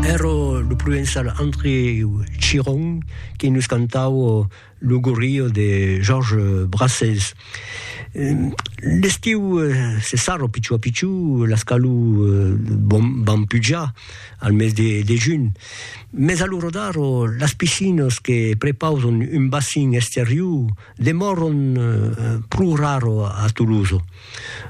Ero lo provençal André Chiron qui nos cantavo lo gorrio de Georges Brassens. L'estiu se sarro pichó a pichó, las calor van pujar al mes de de junh, mes a lo rodar las piscinas que prepausan un bacin exterior demòran pro raro a Tolosa.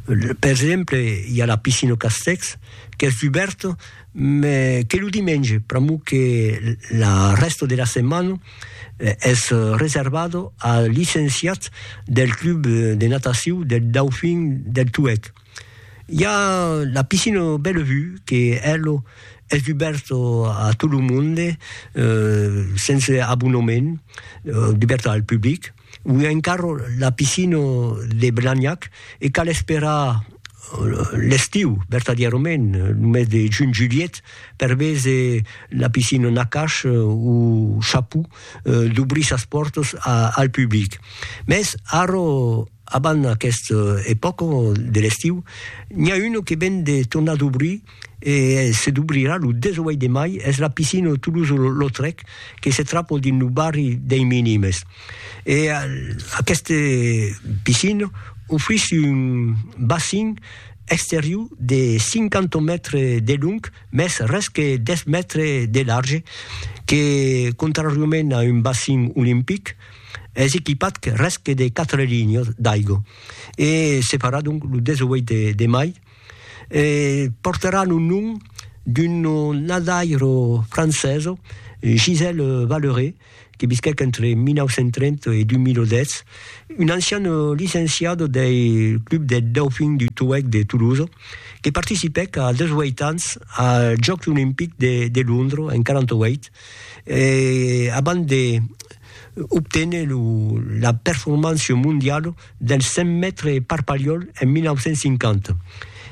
Per exemple, i a la piscina Castèx, qu'es dubèrt, me que lo dimenge, pr'amor que la rèsta de la setmana es reservada als licenciats del club de natacion del Dauphin del Tuèlh. I a la piscina Bellevue que ela es dubèrta a tot lo monde, sense abonament, dubèrta al public. Ui encara la piscina de Blagnac e cal esperar l'estiu, vertadièrament, lo mes de junh-julhet, per véser la piscina Nakash o Chaput dobrir sas pòrtas al public. Mès ara, abans aquesta epòca de l'estiu, n'i a una que ven de tornar dobrir e se dubrirà lo 18 de mai es la piscina de Toulouse-Lautrec que se trapo dins lo barri dei Minimes e aquesta piscina ofrís un bassin exterior de 50 mètres de long mès res que 10 mètres de large que contrariament a un bassin olimpic es equipat res que de 4 linhas d'aigua e se farà donc lo 18 de mai. e portaràn un nom d'un nadaire francés, Gisèle Valleré, que visquèc entre 1930 e 2010, un ancian licenciat del Club des Dauphins du Touac de Toulouse, que participèc a 18 ans als Jòcs Olimpics de Londres en 48, abans d'obténer la performance mondiala del cent mètres per Palhol en 1950.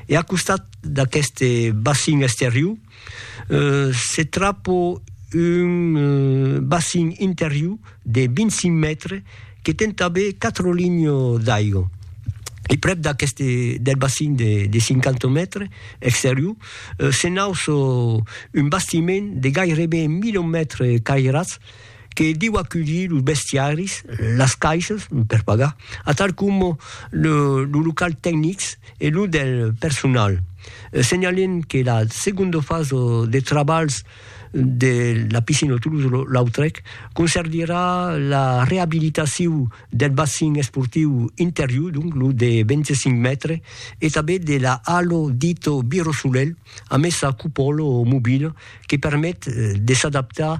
E a costat d'aqueste bacin exterior se trapa un bacin interior de 25 mètres que ten tanben 4 linhas d'aiga. E prèp d'aqueste del bacin de 50 mètres exterior se nauça un bastiment de gaireben 1000 mètres cairats, que diu aculhir los bestiaris, las caisses per pagar, atal coma los locals tecnics e los del personal. Senhalem que la segonda fasa de trabalhs de la piscina Toulouse-Lautrec concerdirà la reabilitacion del bassin esportiu interior, donc lo de 25 mètres, e tanben de la halo dita Biro Solelh, amessa cupòla mobila que permet de s'adaptar